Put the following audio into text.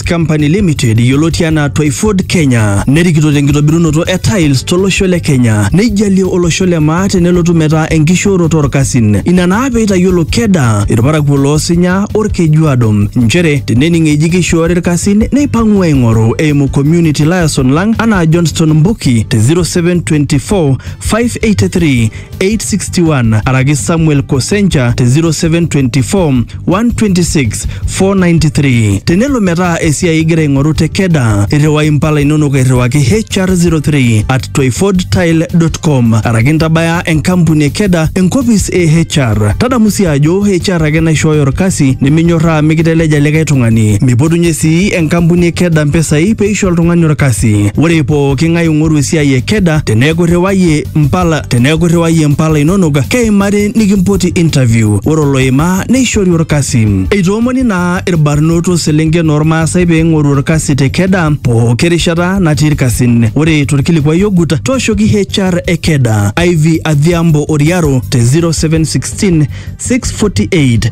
West Company Limited yioloti anaa Twyford Kenya nerikito tenkitobirunoto e tiles tolosho le Kenya neijalie olosho le maa tenelotu metaa enkishooroto orkasin. Ina naa pee eitayiolo Keda irparakuo loo Sinya Olkejuado nchere tenening eji keishoori irkasin neipang'u aing'oru eimu community liaison lang anaa Johnston Mbuki te 0724 583 861 araki Samuel Kosencha te 0724 126 493. Tenelo metaa esiai igira aing'oru te Keda, irriwai impala inonok airriwaki HR03 at twyfordtile.com araki ntabaya enkampuni e Keda enkopis e HR. Tadamu sii ajo HR ake naishooyo orkasi niminyorraa mikiteleja likae tung'ani. Mipotunye sii enkampuni e Keda mpisai peisho oltung'ani orkasi. Ore pooki ng'ae ong'oru esiai e Keda teneeku irriwayie mpala teneeku irriwayie mpala inonok keimari nikimpoti interview ore oloimaa neishori orkasi eitoomoni naa irbarnot oselenken ormaasai pee eing'oru orkasi te keda pooki rishata natii irkasin ore torkilikuai ogut tooshoki HR e keda Ivy Adhiambo Oriaro te 0716 648